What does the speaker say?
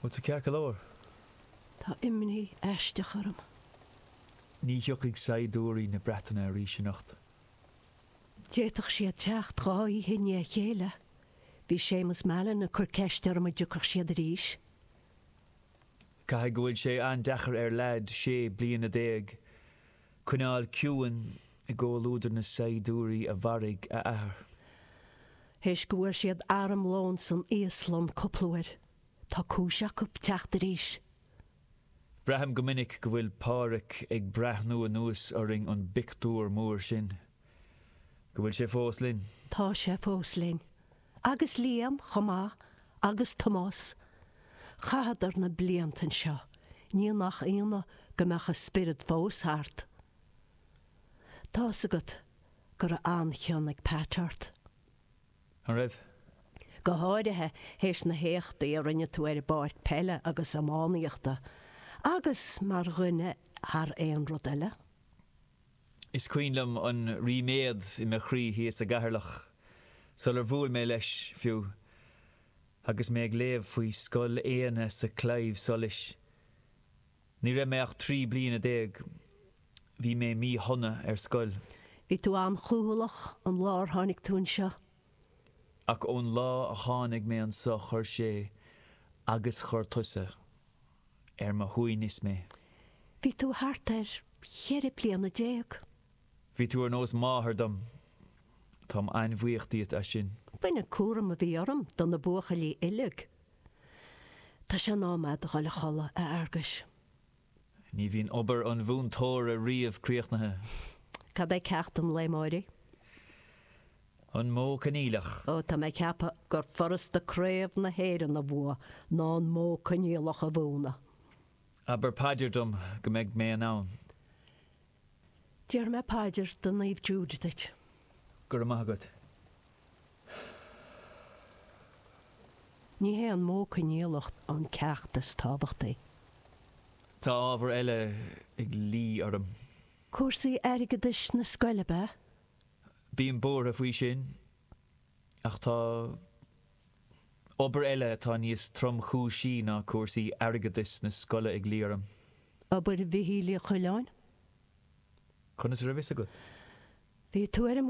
Bhuel, tá, ceart go leor. Tá imní aisteach orm. Ní thiocfaidh saighdiúirí na Breataine arís anocht. D'fhéadfaidís siad teacht dhá oíche i ndiaidh a chéile. Bhí Séamus Mallon ag cur ceiste orm an dtiocfadh siad arís. Caithfidh go bhfuil sé an-deacair ar lad sé bliana déag Coinneáil ciúin i gcomhluadar na saighdiúirí a mharaigh a athair. Théis go bhfuair siad armlón san íoslach cúpla uair, tá cúis acu teacht arís. Braithim go minic go bhfuil Pádraic ag breathnú anuas orainn ón bpictiúr mór sin. Go bhfuil sé fós linn. Tá sé fós linn. agus Liam chomh maith agus Tomás, chaitheadar na blianta anseo, ní nach ionadh go mbeadh a spiorad fós thart. Tá's agat go raibh an-chion ag Pat ort. An raibh? Go háirithe théis na héachtaí a rinne tú ar an bpáirc peile agus iománaíochta, agus mar dhuine thar aon rud eile. Is cuimhin liom an ríméad i mo chroí thíos i gCeatharlach sular bhuail mé leis, fiú, agus mé ag léamh faoi Scoil Éanna sa Claidheamh Soluis. Ní raibh mé ach trí bliana déag. Bhí mé mí-shona ar scoil. Bhí tú an-chúthaileach an lá ar tháinig tú anseo. Ach ón lá a tháinig mé annso chuir sé agus chuir tusa ar mo shuaimhneas mé. Bhí tú thart ar cheithre bliana déag. Bhí tú ar nós máthar dom. Táim an-bhuíoch díot as sin. Bhain an cúram a bhí orm do na buachaillí uileag. Tá sé in am a'd a dhul a chodladh, a Fhearguis. Ní bhíonn obair an mhúinteora riamh críochnaithe. Cad é ceacht an lae amáraigh? An Modh Coinníollach. Ó, tá mé ag ceapadh gur furasta Craobh na hÉireann a bhua ná an Modh Coinníollach a mhúnadh. Abair paidir dom go mbeidh mé in ann. Déarfaidh mé paidir do Naomh Jude duit. Go raibh maith agat. Ní hé an modh coinníollach an ceacht is tábhachtaí. Tá ábhar eile ag luí orm. Cúrsaí airgeadais na scoile, ab ea? Bím buartha faoi sin. Ach tá obair eile atá níos tromchúisí ná cúrsaí airgeadais na scoile ag luí orm. Obair Mhichíl Uí Choileáin? Conas a raibh fhios agat? Bhí tú ar an.